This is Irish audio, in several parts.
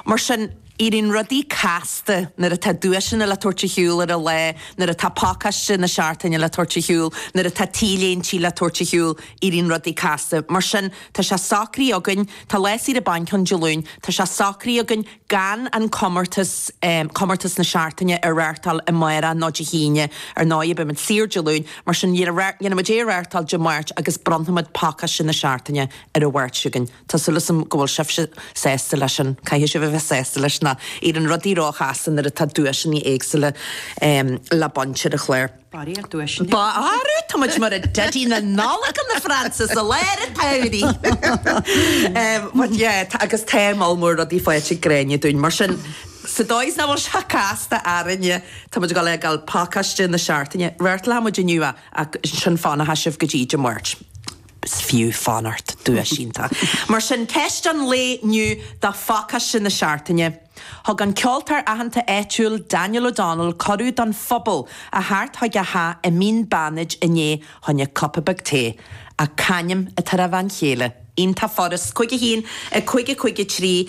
Mar sin, éiríonn rudaí casta nuair atá duaiseanna le tabhairt ar shiúl ar an lá, nuair atá pacáiste na Seachtaine le tabhairt ar shiúl, nuair atá t-léintí le tabhairt ar shiúl, éiríonn rudaí casta. Mar sin, tá sé socraithe againn, tá lá saoire bainc ann Dé Luain, tá sé socraithe againn gan an comórtas, comórtas na Seachtaine, a reáchtáil amárach nó Dé hAoine. Ar ndóigh, beimid saor Dé Luain, mar sin, dhéanfaimid é a reáchtáil Dé Máirt agus bronnfaimid pacáiste na Seachtaine ar an Mháirt againn. Tá súil asam go bhfuil sibhse sásta leis sin. Caithfidh sibh a bheith sásta leis nó éiríonn rudaí ró chasta nuair atá duaiseanna éagsúla le baint ar an chlár. Faraor, duaiseanna. Faraor, tá muid mar Daidí na Nollag in na Fraince sa lá ar an tsamhraidh! But yeah, tá, agus tá moll mór rudaí faighte ag Gráinne dúinn, mar sin sa dóigh is nach bhfuil sé casta orainne, tá muid ag gabháil a ghabháil pacáiste na Seachtaine a reáchtáil. Reáchtálfaidh muid inniu é, ach ansin fanfaidh sibh go dtí Dé Máirt. Is fiú fanacht, duais iontach mar sin Ceist an lae inniu do phácáiste na Seachtaine. Thug an ceoltóir aitheanta áitiúil Daniel O'Donnell cuireadh don phobal a theacht chuig a theach i Mín Bánaid inné fá choinne cupa beag tae. C'ainm atá ar a bhean chéile? Iontach furast. 51 55 3.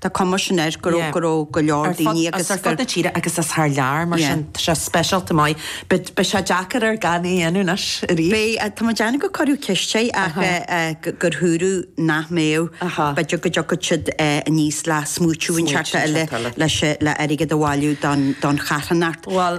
Tá cuma mar sin air go raibh go raibh go leor daoine agus. Is ar fud na tíre agus is thar lear, mar sin tá sé speisialta maith. Beidh sé deacair air gan é a dhéanamh anois arís. Beidh, tá mé ag déanamh go cuireadh ceist air ach gur dhúirt sé nach mbeadh, b'fhéidir go dtiocfadh siad aníos le smaoitiú inteacht tseachtain eile le airgead a bhailiú don charthannacht. Bhuel.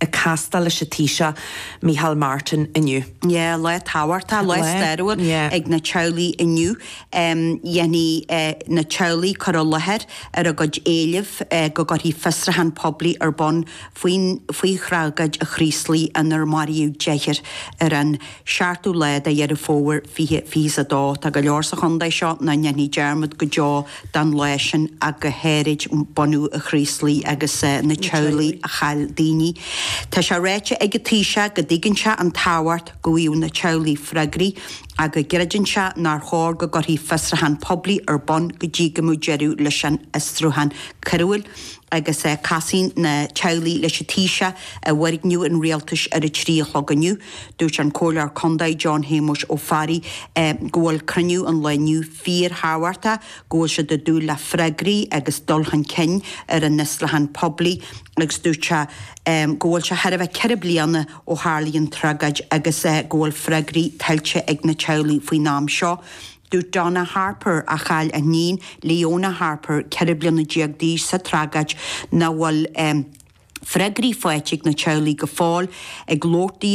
ag castáil leis an Taoiseach Micheál Martin inniu. Yeah, lá tábhachtach, lá stairiúil ag na teaghlaigh inniu. Dhéanfaidh na teaghlaigh cur i láthair ar a gcuid éileamh go gcuirfí fiosrúchán poiblí ar bun faoi thragóid an Chraoslaigh inar maraíodh deichniúr ar an 7ú lá de Dheireadh Fómhair 20 22. Tá go leor sa chontae seo nach ndéanfaidh dearmad go deo den lá sin ach go háirid bunadh an Chraoslaigh agus na teaghlaigh a chaill daoine. Tá sé ráite ag an Taoiseach go dtuigeann sé an tábhacht go bhfaigheadh na teaghlaigh freagraí ach go gcreideann sé nár chóir go gcuirfí fiosrúchán poiblí ar bun go dtí go mbeadh deireadh leis an fhiosrúchán coiriúil agus casfaidh na teaghlaigh leis an Taoiseach i bhfoirgneamh an Rialtais ar a trí a chlog inniu. Dúirt an Comhairleoir Condae John Shéamuis Ó Fearraigh go bhfuil cruinniú an lae inniu fíor thábhachtach, go bhfuil siad ag dúil le freagraí agus dul chun cinn ar an fhiosrúchán poiblí agus dúirt sé go bhfuil sé chóir a bheith ceithre bliana ó tharlaigh an tragóid agus go bhfuil freagraí tuillte ag na teaghlaigh faoin am seo. Dúirt Donna Harper a chaill a hiníon Leona Harper, ceithre bliana déag d'aois sa tragóid nach bhfuil freagraí faighte ag na teaghlaigh go fóill ag labhairt di.